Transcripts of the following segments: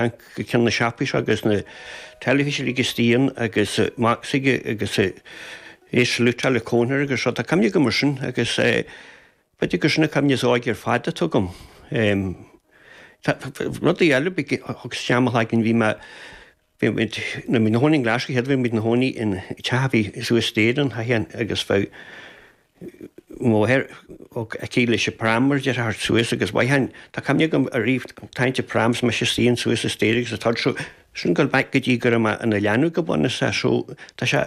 an ceann na seapáis agus na teilifíse le Giustín agus Max aige agus é ag slutáil a cónra agus rud. Tá cuimhne agam ar sin agus b'fhéidir gur sin an cuimhne is óige ar fad atá agam. Rudaí eile bhí thug sé tamall againn bhí mé bhí muid na muid ina gcónaí in Glaschú chéad bhí muid ina gcónaí in teach a bhí suas staighre in Sháigheán agus bheadh mháthair ag teacht leis an pram mar a déarfá thart suas agus mhaith ann. Tá cuimhne agam ariamh ag tarraingt an pram is mise i mo shuí ann suas an staighre agus atá anseo sin go mbeadh go dtí go raibh mé ina leanbh go bunúsach so tá sé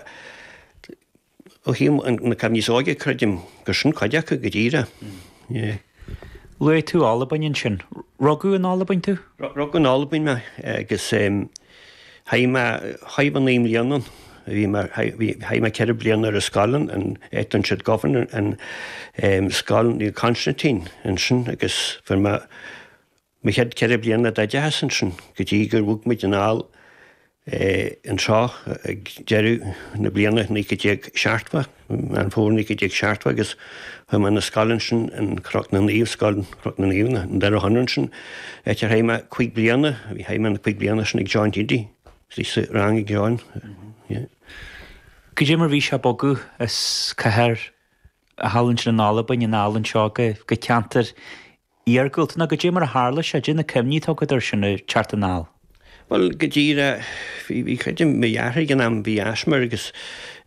ó thaobh na cuimhní is óige creidim gur sin cuid acu go díreach. Luaigh tú Albain ansin. Rugadh in Albain tú? Rugadh in Albain mé agus chaith mé, chaith mé naoi mbliana ann. Bhí mé, bhí, chaith mé ceithre bliana ar an scoil ann, an Etonset Govan, an scoil Naomh Constantine ansin agus fuair mé Mo chéad ceithre bliana d'oideachas ansin go dtí gur bhog muid anall anseo ag deireadh na bliana naoi céad déag seachtó, Meán Fómhair naoi céad déag seachtó agus chuaigh mé chun na scoile ansin in Cnoc na Naomh, Scoil Chnoc na Naomh, in Doire Chonaire ansin, áit ar chaith mé cúig bliana, bhí, chaith mé na cúig bliana sin ag John Hidy, bhí mé sa rang ag John, yeah. Goidé mar bhí sé ag bogadh as cathair thall ansin in Albain anall anseo go ceantar iargúlta ná goidé mar a tharla sé, goidé na cuimhní atá agat air sin, ag teacht anall. Bhuel, go díreach, bhí, bhí cuid de mo dheartháir ag an am, bhí asthma air agus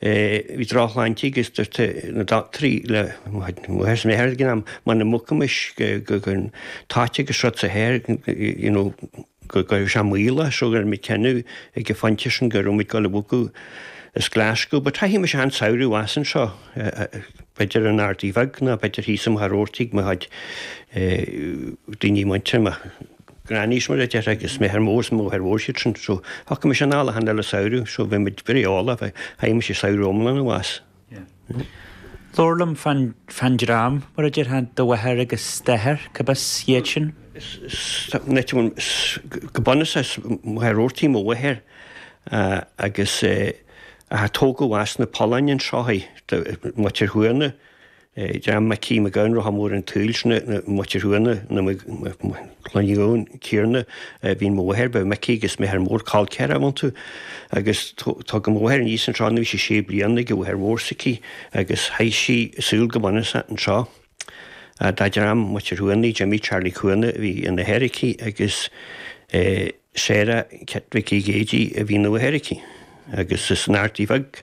bhí drochshláinte aige agus dúirt na doctúirí le mo mháthair is m'athair ag an am, muna mbogfaimis go, go, go, táite go srutsa thoir, you know, go gcuirfeadh sé moill as so rinne muid cinneadh ag an phointe sin go raibh muid ag dul a bhogadh as Glaschú but chaith mise achan samhradh abhus anseo b'fhéidir in Ardaidh Bheag nó b'fhéidir thíos i Machaire Rabhartaigh mo chuid daoine muinteartha mo ghrannies mar a déarfá agus m'athair mór máthair mhór iad sin so thiocfadh mise anall achan uile samhradh so bhí muid very eolach chaith mise samhradh iomlán abhus. Labhair liom fán dream, mar a déarfá, do mháthair agus d'athair, cárb as iad sin. Go bunúsach as Machaire Rabhartaigh mo mháthair agus ach tógadh as na Polláin an Seoighe, Muintir Chuana, dream Mhicí Mhic Gabhann, Rotha Mór an tSaoil, sin é Muintir Chuana, Cloigeann ciarna a bhí in mo mháthair, ba Micí agus m'athair mór col ceathracha iontu. Agus tugadh mo mháthair aníos anseo in aois a sé bliana chuig a máthair mhór s'aici agus chaith sí a saol go bunúsach anseo. Dá dream Muintir Chuanaigh, Jimmy Charlie Cuana a bhí ina athair aici agus Sarah Chet Mhicí Géidigh a bhí ina máthair aici. Agus is san Ardaidh Bheag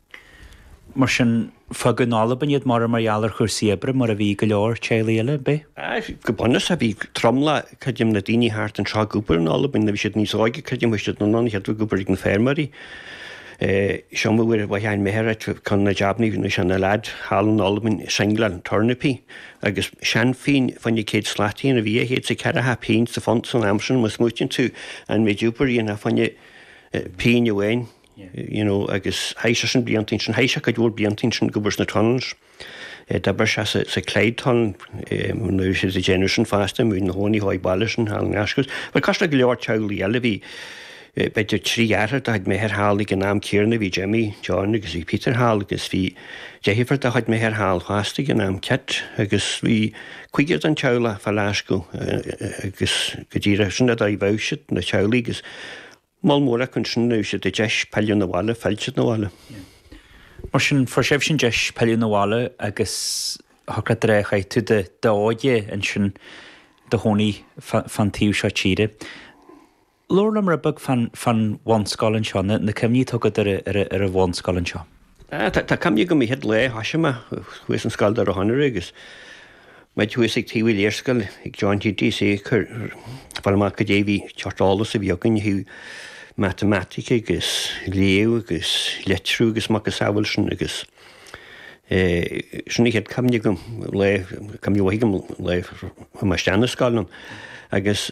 Mar sin, fágadh in Albain iad mar, mar gheall ar chúrsaí oibre mar a bhí go leor teaghlaigh eile ar bith. Go bunúsach, bhí tromlach, creidim, na ndaoine thart anseo ag obair in Albain, nuair a bhí siad níos óige, creidim, bhí siad in ann, chéadfadh, ag obair ag na feirmeoirí. So m'athair fhéin, m'athair, eh, ceann de na jabannaí, bhí sé ina lead thall in Albain, ag singleáil turnapaí, agus seanphínn fá choinne céad slat fhéin agus bhí dhá chéad is ceathracha pínn sa phunt san am sin, má smaoitíonn tú an méid oibre a dhéanfá fá choinne pínn amháin. you know, agus chaith sé sin blianta ansin, chaith sé cuid mhór blianta ansin ag obair sna tunnels. Eh, d'oibrigh sé sa, sa Clyde Tunnel, eh, nuair a bhí siad ag déanamh sin fosta, bhí sé ina chónaí thall i Baillieston thall i nGlaschú. Bhuel, cosúil le go leor teaghlaigh eile bhí, eh, b'fhéidir trí dheartháir de chuid m'athair thall ag an am céarna, bhí Jimmy, John agus bhí Peter thall agus bhí deirfiúr de chuid m'athair thall fosta ag an am, Kit, agus bhí cúigear den teaghlach fá Ghlaschú, eh, eh, agus go díreach sin an dóigh a mbeadh siad, na teaghlaigh agus, Moll mór acu ansin nuair a fuair siad an deis pilleadh na bhaile, phill siad na bhaile. Mar sin, fuair sibhse an deis pilleadh na bhaile agus shocraítear é, chaith tú de d'óige ansin do chónaí fan taobh seo tíre. Labhair liom rud beag fan bhunscoil anseo, na cuimhní atá agat ar an bhunscoil anseo. Tá cuimhne agam an chéad lá a thosaigh mé thuas ansin i scoil Dhoire Chonaire agus muid thuas ag taobh an léarscáil ag John T.T.C. ag iarraidh fáil amach goidé an seort eolas a bhí againn ó thaobh matamaitic agus léamh agus leitriú agus macasamhail sin agus sin an chéad chuimhne agam le, cuimhne mhaith agam le ghabháil isteach na scoile ann agus